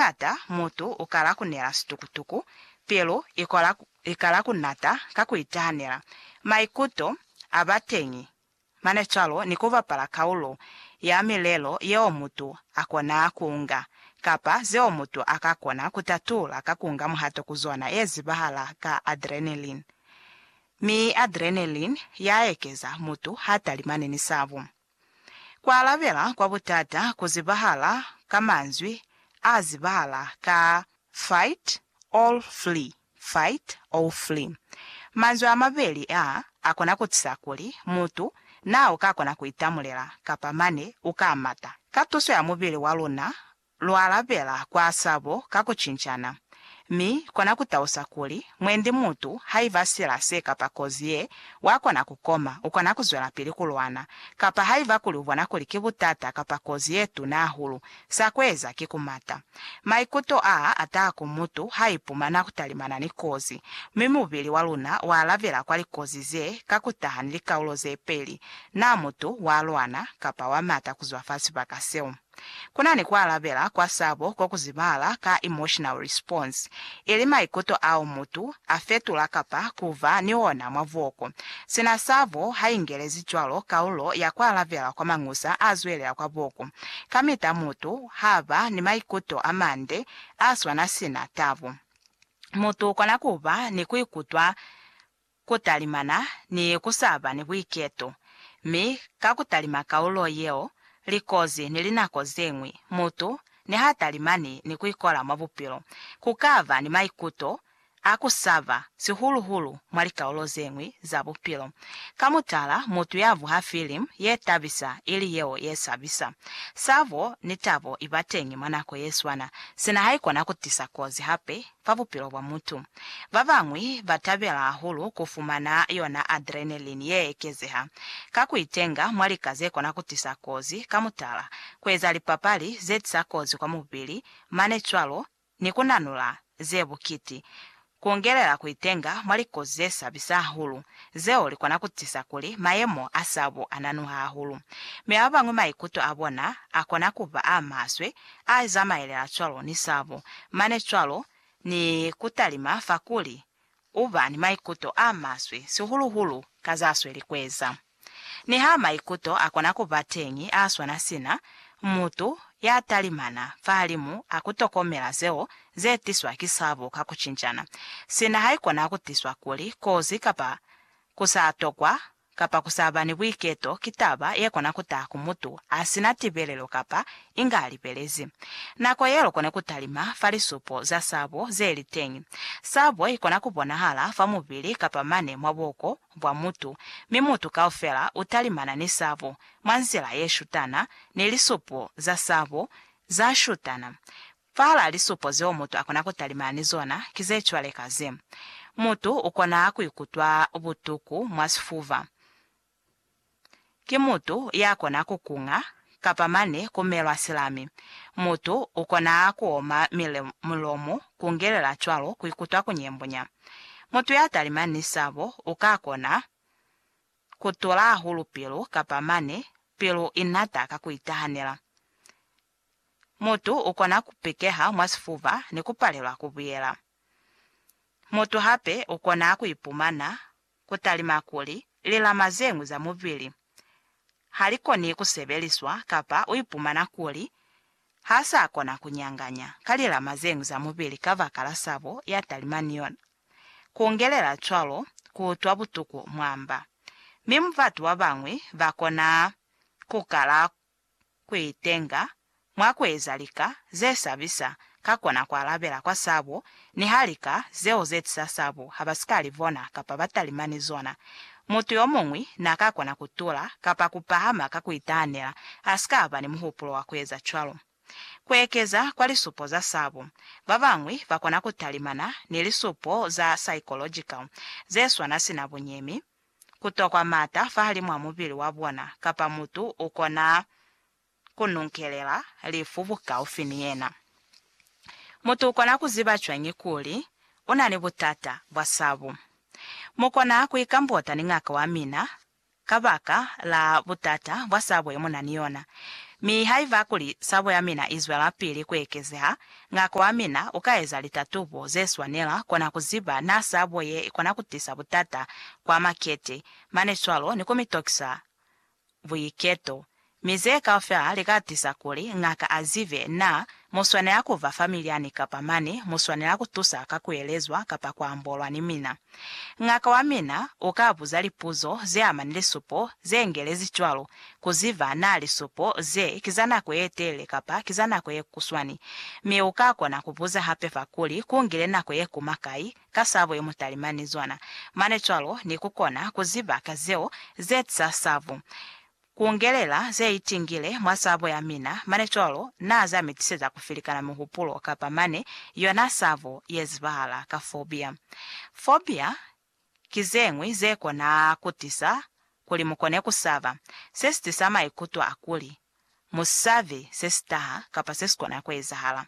Hañata mutu u kala ku nela situkutuku, pilu i kola, i kala ku nata ka ku itahanela, maikuto a ba teñi, mane cwalo ni ku bapala kaulo ya milelo yeo mutu a kona ku nga, kapa zeo mutu a ka kona ku tatula ka ku nga muhato ku zona ye zibahala ka adrenaline. Mi adrenaline ya ekeza, mutu ha talimani ni sabu. Ku alabela kwa butata ku zibahala ka manzwi a zibahala ka fight or flee, fight or flee. Manzwi a mabeli a a kona ku tisa kuli mutu naa u ka kona ku itamulela kapa mane u ka mata. Ka tuso ya mubili wa luna Lwa lapela kwa sabo ka ku cincana, mi kona ku tausa kuli, mwendi mutu haiba sila se kapa kozi ye, wa kona ku koma, u kona ku zwelapili ku lwana. Kapa haiba kuli u bona kuli ki butata kapa kozi ye tuna hahulu, sa ku eza ki ku mata. Maikuto a a taha ku mutu ha ipumana ku talimana ni kozi, mi mubili wa luna wa alabela kwa likozi ze ka ku taha ni likaulo ze peli, na mutu wa lwana kapa wa mata ku zwa fa sibaka seo. Kunani kualabela kwa sabo ko kuzibala ka emotional response, ili maikuto ao mutu afetula kapa kuba ni ona mwa buoko. Sina sabo haingelezi cwalo kaulo ya kualabela kwa mañusa azwelela kwa buoko, kamita mutu haba ni maikuto amande aswana sina tabo. Mutu ukona kuba ni kuikutwa ku talimana ni ku sa ba ni buiketo, mi ka ku talima kaulo yeo, likozi ni linako ze ñwi, mutu ni ha talimani ni ku ikola mwa bupilo, ku ka ba ni maikuto a ku saba, sihulu-hulu mwa likaulo ze ñwi za bupilo. Ka mutala, mutu ya vuha filimu ye tabisa ili yeo ye sabisa. Sabo ni tabo i ba teñi mwa nako ye swana, sina ha i kona ku tisa kozi hape. fa bupilo bwa mutu. Ba bañwi ba tabela hahulu ku fumana yona adrenaline ye ekezeha ka ku itenga mwa lika ze kona ku tisa kozi, ka mutala, ku eza lipapali ze tisa kozi kwa mubili, mane cwalo ni ku nanula ze bukiti, ku ungelela ku itenga mwa likozi ze sabisa hahulu, zeo li kona ku tisa kuli mayemo a sabo a nanuha hahulu. Mi ba bañwi maikuto a bona a kona ku ba a maswe A zamaelela cwalo ni sabo, mane cwalo, ni kutalima fa kuli, Uba ni maikuto a maswe, sihulu-hulu ka za sweli kueza. Niha maikuto akona kuba teñi a swana sina, mutu ya talimana fahalimu a kutokomela zeo ze tiswa ki sabo ka kucinjana, sina haikona kutiswa kuli kozi kapa Ku sa tokwa kapa ku sa ba ni buiketo ki taba ye kona ku taha ku mutu a si na tibelelo kapa inga a lipelezi. Nako ye lukone ku talima fa lisupo za sabo ze li teñi. Sabo i kona ku bonahala fa mubili kapa mane mwa buko bwa mutu, mi mutu kaufela u talimana ni sabo mwa nzila ye shutana ni lisupo za sabo za shutana. Fahalaa lisupo zeo mutu akona kutalimana ni zona ki zecwalekaze. Mutu ukona kuikutwa butuku mwa sifuba. Ki mutu yakona kukunga, kapa mane kumelwa silami. Mutu ukona kuoma mulomo, kungelela cwalo kuikutwa kunyembunya. Mutu yatalimani ni sabo ukakona kutula hahulu pilu kapa mane pilu inata ka kuitahanela. Mutu ukona kupekeha mwa sifuba ni kupalelwa kubuyela. Mutu hape ukona kuipumana kutalima kuli lilama zeñwi za mubili halikoni kusebeliswa kapa uipumana kuli haasakona kunyanganya ka lilama zeñwi za mubili kabakala sabo yatalima ni yona. Kungelela cwalo kuutwa butuku mwa mba, mi mubatu babañwi bakona kukala kuitenga mwa kueza lika zesabisa ka kona kualabela kwa sabo, niha lika zeo zetisa sabo habasika libona kapa batalima ni zona. Mutu yomuñwi naaka kona kutula kapa kupahama ka kuitahanela asika ba ni muhupulo wa kueza cwalo. Kuekeza kwa lisupo za sabo, babañwi bakona kutalimana ni lisupo za psychological zeswana sina bunyemi, ku tokwa mata fahalimw'a mubili wa bona, kapa mutu u kona ku nunkelela lifu bukaufi ni yena. Mutu u kona ku ziba cwañi kuli u na ni butata bwa sabu? Mu kona ku ikambota ni ngaka wa mina kabaka la butata bwa sabo ye mu na ni yona. Mi haiba kuli sabo ya mina i zwelapili ku ekezeha, Ngako wamina ukaeza litatubo zeswanela kona kuziba na sabo ye ikona kutisa butata kwa makete, mane cwalo ni kumitokisa buiketo. Mi ze kaufela lika tisa kuli ngaka azibe na muswanela kuba fa milyani kapa mane muswanela kutusa ka kuelezwa kapa kuambolwa ni mina. Ngaka wa mina u ka buza lipuzo ze amani lisupo ze ngelezi cwalo ku ziba na lisupo ze ki za nako ye telele kapa ki za nako ye kuswani, mi u ka kona ku buza hape fa kuli ku ngile nako ye kuma kai ka sabo ye mutalimani zwana mane cwalo ni ku kona ku ziba ka zeo ze tisa sabo. Kungelela zeitingile mwa sabo yamina, mane cwalo Na za mitiseza kufilikana mihupulo kapa mane yona sabo yezibahala ka fobia. Fobia ki zeñwi zekona kutisa kuli mukone kusaba, sesitisa maikuto akuli musabi sesitaha kapa sesikona kuezahala.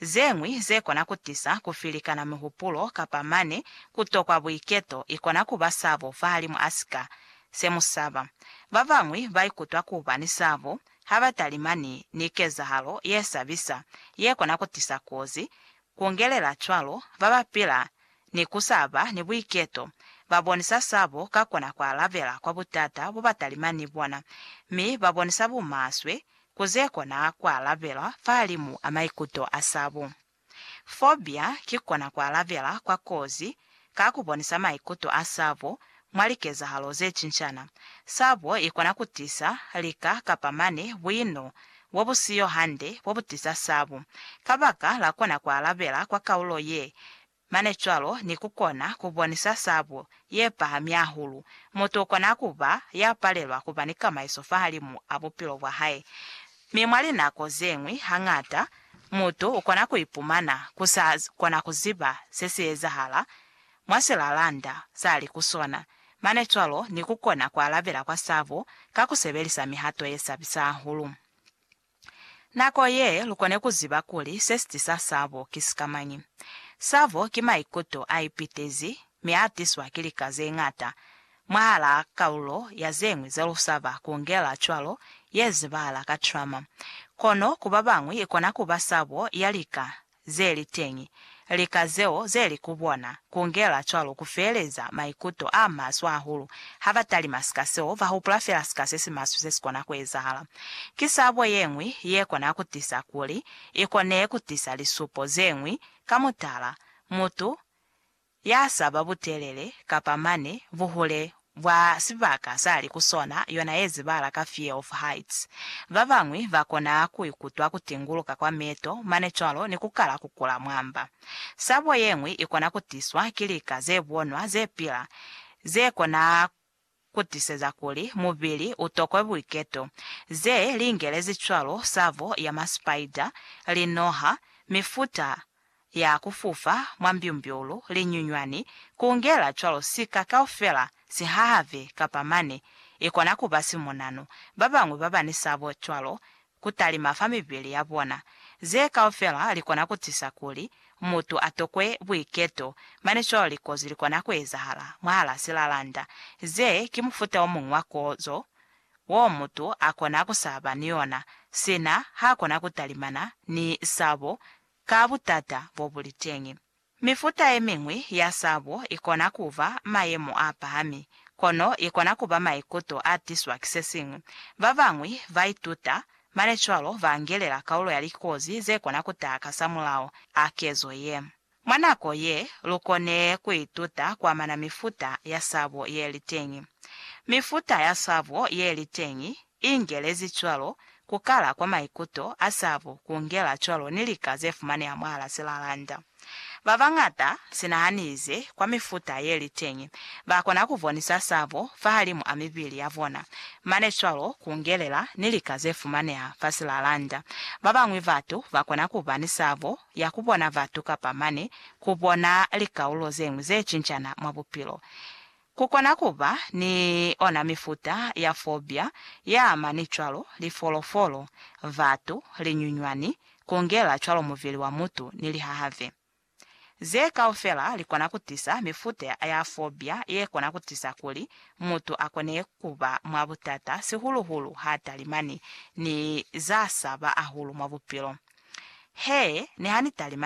Zeñwi zekona kutisa kufilikana mihupulo kapa mane kutokwa buiketo ikona kuba sabo fahalimu asika se mu saba. Ba bañwi ba ikutwa ku ba ni sabo ha ba talimani ni kezahalo ye sabisa ye kona ku tisa kozi. Ku ngelela cwalo, ba ba pila ni ku sa ba ni buiketo ba bonisa sabo ka kona ku alabela kwa butata bo ba talimani ni bona, mi ba bonisa bumaswe ku ze kona ku alabelwa fahalimu a maikuto a sabo. Fobia ki kona ku alabela kwa kozi ka ku bonisa maikuto a sabo mwa likezahalo ze cincana. Sabo i kona ku tisa lika kapa mane buino bo bu siyo hande bo bu tisa sabo. Kabaka la kona ku alabela kwa kaulo ye mane cwalo ni ku kona ku bonisa sabo ye pahami hahulu, mutu u kona ku ba ya palelwa ku ba ni kamaiso fahalimu a bupilo bwa hae. Mi mwa linako zeñwi, hañata, mutu ukona kuipumana ku sa kona kuziba se si ezahala mwa silalanda sa li ku sona, mane cwalo ni kukona kualabela kwa sabo ka kusebelisa mihato ye sabisa hahulu. Nako ye, lukone kuziba kuli se sitisa sabo ki sikamañi. Sabo ki maikuto a ipitezi mi a tiswa ki lika ze ñata. Mwahalaa kalulo ya ze ñwi ze lu sa ba kungela cwalo ye zibahala ka trauma. Kono ku ba bañwi i kona ku ba sabo ya lika ze li teñi. Lika zeo ze li ku bona kungela cwalo ku feeleza maikuto a maswe hahulu. Ha ba talima sika seo, ba hupula fela sika se si maswe se si kona ku ezahala. Ki sabo ye ñwi ye kona ku tisa kuli i kone ku tisa lisupo ze ñwi, ka mutala, mutu Ya saba butelele kapa mane buhule bwa sibaka sa li ku sona yona ye zibala ka fear of heights. Ba bañwi ba kona ku ikutwa ku tinguluka kwa meto mane cwalo ni ku kala ku kula mwamba. Sabo ye ñwi i kona ku tiswa ki lika ze bonwa ze pila ze kona ku tiseza kuli mubili u tokwe buiketo ze li ingelezi cwalo savo ya masipaida, linoha, mifuta ya ku fufa mwa mbyumbyulu, linyunywani, ku ungela cwalo sika kaufela, sihahave, kapa mane, i kona ku ba simonano. Ba bañwi ba ba ni sabo cwalo ku talima fa mibili ya bona. Ze kaufela li kona ku tisa kuli mutu a tokwe buiketo, mane cwalo likozi li kona ku ezahala mwahal'a silalanda. Ze ki mufuta o muñwi wa kozo wo mutu a kona ku sa ba ni yona sina h'a kona ku talimana ni sabo ka butata bo bu li teñi. Mifuta ye miñwi ya sabo i kona ku ba mayemo a pahami, kono i kona ku ba maikuto a tiswa ki se siñwi. Ba bañwi ba ituta, mane cwalo ba angelela kaulo ya likozi ze kona ku taha kasamulaho a kezo ye. Mwa nako ye, lu kone ku ituta ku amana mifuta ya sabo ye li teñi. Mifuta ya sabo ye li teñi I ngelezi cwalo, ku kala kwa maikuto a sabu ku ngela cwalo ni lika ze fumaneha mwahala silalanda. Ba bañata, sina ha ni ize kwa mifuta ye li teñi, ba kona ku bonisa sabu fahalimu a mibili ya bona, mane cwalo ku ngelela ni lika ze fumaneha fa silalanda. Ba bañwi batu ba kona ku ba ni sabu ya ku bona batu kapa mane ku bona likaulo ze ñwi ze cincana mwa bupilo. Ku kona ku ba ni ona mifuta ya fobia ye amani cwalo, lifolofolo, batu, linyunywani, ku ngela cwalo mubili wa mutu ni lihahave. Ze kaufela li kona ku tisa mifuta ya fobia ye kona ku tisa kuli mutu a kone ku ba mwa butata, sihulu-hulu ha talimani ni za saba ahulu mwa bupilo. He, ni ha ni talimani!